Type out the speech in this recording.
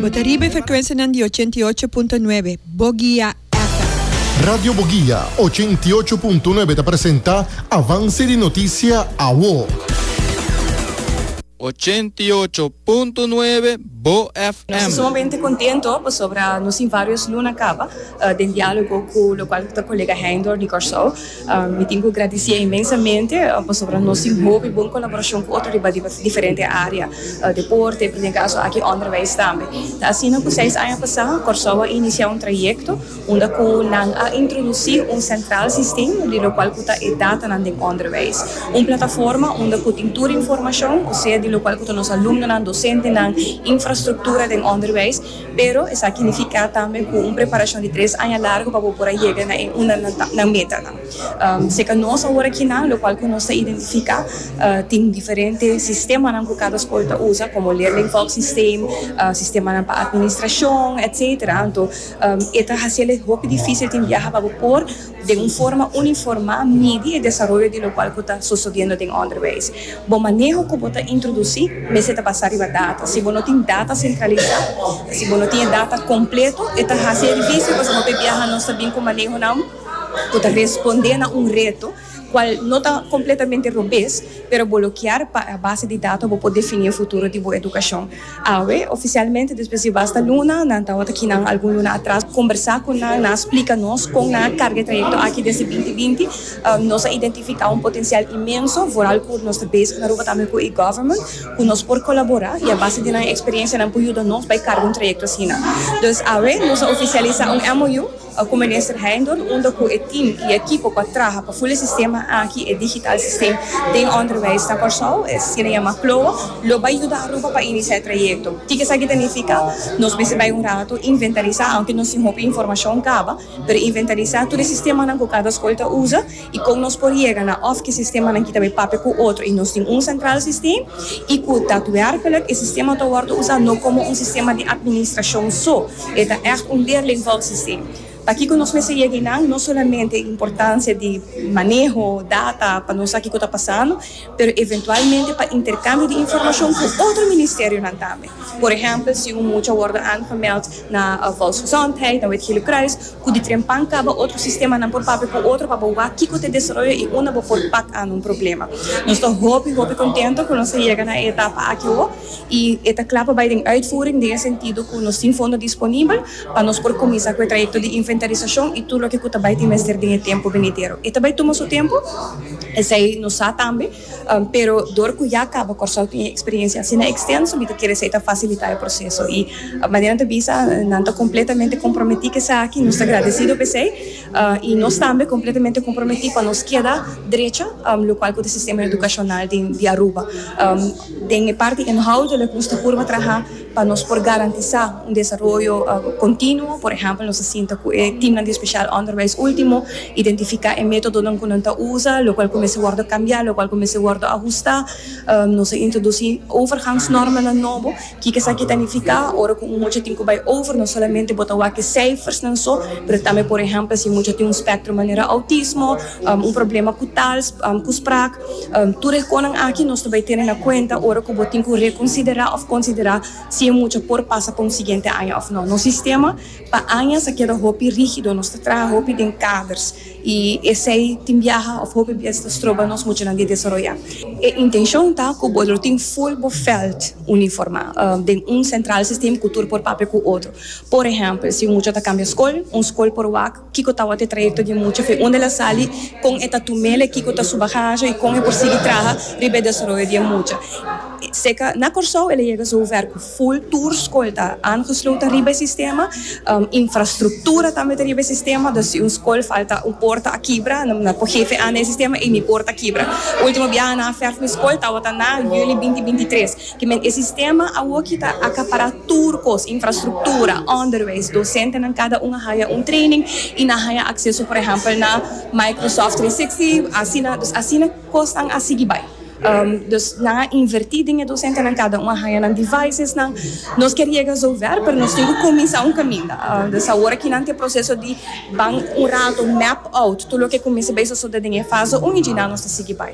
Bo ta riba e frekuensianan di ochenta i ocho punto nuebe Bogia FM. Radio Bogia ochenta i ocho punto nuebe ta presenta Avance di Noticia Awo. Ochenta i ocho punto nuebe Bo Nos ta FM. sumamente contento pasobra nos tin varios luna caba den dialogo cu lo cual ta colega Heindor di Corsou. Mi tin cu gradicié inmensamente pasobra nos tin hopi bon colaboracion cu otro riba diferente area, deporte, bini caso aki onderwijs tambe. Ta asina cu seis aña pasá Corsou a inicia un trayecto unda cu nan a introduci un central sistem di locual cu ta e datanan den onderwijs. Un plataforma unda cu tin tur informacion, osea di locual cu ta nos alumnonan, docentenan, infrastructura den onderwijs. Pero esaki nifiká tambe ku un preparashon di tres aña largu pa bo por a yega na e unda nan metanan. Seka nos awor aki nan, lokual ku nos ta identifiká, tin diferente sistemanan ku kada skol ta usa, komo leerlingvolgsysteem, sistemanan pa atministrashon, etsetera. Anto e ta hasiel e hopi difísil tin biaha pa bo por. den un forma uniformá midi e desaroyo di lokual ku ta sosodiendo den ònderwijs. Bo maneho ku bo ta introdusí mester ta basá riba data. Si bo no tin data sentralisá, si bo no tin e data kompleto, e ta hasi e difísil pasobra hopi biaha nos ta bin ku manehonan ku ta respondé na un reto kual no ta kompletamente robes, pero bo lo kier pa a base di data bo por definí e futuro di bo edukashon. Awe, ofisialmente despues di basta luna, nan tawata aki nan algun luna atras kombersá ku nan, nan a splika nos kon nan a karga e trayekto aki desde binti binti. Nos a identifiká un potensial inmenso, vooral ku nos ta bezig Aruba tambe ku e-government, ku nos por kolaborá i a base di nan eksperensia nan por yuda nos bai karga un trayekto asina. Dus awe nos a ofisialisá un MOU. A cu Minister Heindorp unda cu e team y ekipo pa traha pa ful e sistema aki, e digital system, den onderwijs na Corsou, e asina yama Ploa, lo bay yuda Aruba pa inicia e trayecto. Tic esaki ta nifica? Nos mester bay un rato inventarisa, aunke nos tin hopi informacion caba, pero inventarisa tur e sistemanan cu cada scol ta usa, y con nos por yega na of ki sistemanan ki ta bay papia cu otro y nos tin un central system y cu datwerkelijk e sistema ta wordo usa no como un sistema di administracion so, e ta echt un leerlingvork system. Pakico nos mester yega eynan? No solamente e importancia di maneho data pa nos sa kico ta pasando, pero eventualmente pa intercambio di informacion cu otro ministerionan tambe. Por ehempel, si un mucha wòrdu aangemeld na Volksgezondheid, na Wetgele Kruis, ku di tren pan kaba, otro sistemanan por papia ku otro pa bo wak kiko ta e desaroyo i unda bo por pak anda un problema. Nos ta hopi, hopi kontento ku nos a yega na e etapa aki awor i e ta kla pa bai den uitvoering den e sentido ku nos tin fondo disponibel pa nos por kuminsá ku e trayekto di inventarisashon i tur loke ku ta bai tin mester den e tempu benidero. E ta bai tuma su tempu, esei nos sa tambe. Pero dor cu ya caba Corsou tin e experiencia asina extenso mi ta kere sa e ta facilita e proceso y manera nan ta bisa nan ta completamente comprometi cu esaki, nos ta agradecido pa esey y nos tambe completamente comprometi pa nos keda drecha lo cual cu ta e sistema educacional di Aruba. Den e parti inhoudelijk nos ta purba traha. Pa nos por garantisá un desaroyo kontinuo, por ehèmpel nos a sinta ku e timnan di spesial ònderwijs último, identifiká e métodonan ku nan ta usa, lokual ku mester wòrdu kambiá, lokual ku mester wòrdu ahustá. Nos a introdusí overgangsnormanan nobo. Kiko esaki ta nifiká? Ora ku un mucha tin ku bai over, no solamente bo ta wak e seifersnan so, pero tambe, por ehèmpel, si e mucha tin un spèktrum manera outismo, Un problema ku tal, ku sprak, tur e konan aki nos ta bai tene na kuenta ora ku bo tin ku rekonsiderá òf konsiderá si e mucha por pasa pa un siguiente aña òf nò. Nos sistema pa añas a keda hopi rígido, nos ta traha hopi den kaders i esei tin biaha òf hopi bes ta stroba nos muchanan di desaroyá. E intenshon ta ku bo lo tin ful bo vèlt uniformá den un sentral sistem ku tur por papia ku otro. Por ehèmpel, si un mucha ta kambia skol, un skol por wak Kiko tawat e trayekto di muchafe? Unda el a sali? Kon e ta tumel? E kiko ta su bagaje i kon e por sigui traha riba e desaroyo di e mucha? Seka na Kòrsou el a yega zover ku ful tur skol ta aangesloten riba e sistema, infrastruktura tambe ta riba e sistema, dus si un skol falta un por ta a kibra, nan por hefe aan na e sistema i mi por ta kibra. Ultimo biaha nan a fèrf mi skol tawata na yüli binti binti tres. Kimen e sistema awoki ta akapará tur kos, infrastruktura, ònderwys, dosentenan kada un a haya un training i nan haya akseso por ehèmpel na Microsoft trescientos sesenta, asina dus asina kosnan a sigui bai. Dus nan a invertí den e dosentenan, kada un a haya nan devices-nan. Nos kier yega zover, pero nos tin ku kuminsá un kaminda. Dus awor aki nan ta e proseso di ban un rato, map out tur loke kuminsha bai sosodé den e fase un i djina nos ta sigui bai.